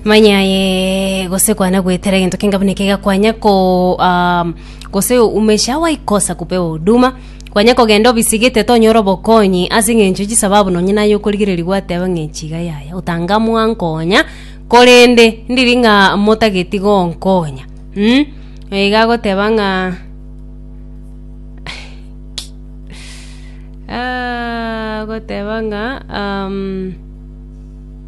Manya aye gose kwana gwetera egento kenga buna eke gakwanya ko ah, gose umesha waikosa kupewa huduma kwanya kogenda obisigete tonyora obokonyi ase eng'encho chisababu nonye naye okorigereria gwateba ng'a echiga yaya otanga mwankonya korende ndiri ng'a motageti gonkonya mm? iga agoteba ng'a Ah, agoteba ng'a um,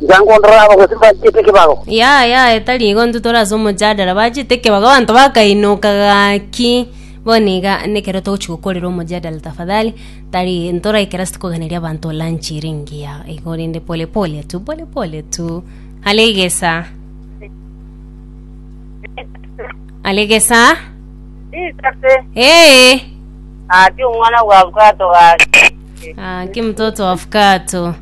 Tiga ngondore abagosiri bachiete ekebago. Yaya yaya tari igo intwe tore ase omojadara bachete ekebago abanto bakainoka gaki bono iga nekero togochi gokorera omojadara tafadhali tari ntoraikera ase koganeria abanto lunch ere engiya igo rende pole pole tu pole pole tu alegesa alegesa Isase, ee ati omwana bwa bwato gake. ah, ki mtoto wa fukato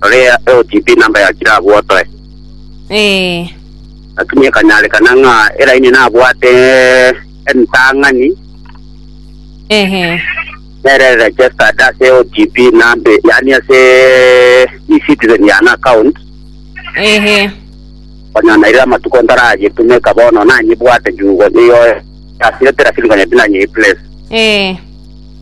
Rorea eotipi namba ya chire abwo otoe. Ee. Lakini ekanyarekana ng'a Elaini nabwate entang'ani Ehe. nere registered ase eotipi nambe yaani ase eCitizen yane account Ehe. konya naire amatuko ntarayetumeka bono nanyebwate juu nigo asirete lakini konya tinanyereplace. Ee.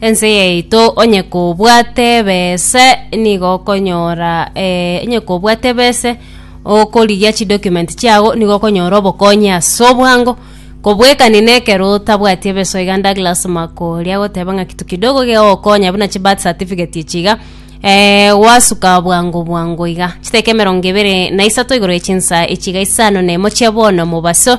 Ense yaito onye kobwate ebese nigo okonyora eh, onye kobwate ebese okorigia chidocument chiago nigo okonyora obokonyi ase obwango kobwekani na ekero otabwati ebese iga Douglas Makori agoteba ng'a kitu kidogo gegokonya buna chi birth certificate echi iga eh, gwasuka bwango bwango iga chiteka emerongo ibere na isato igoro ya chinsa echi iga isano na emo chia bono mobaso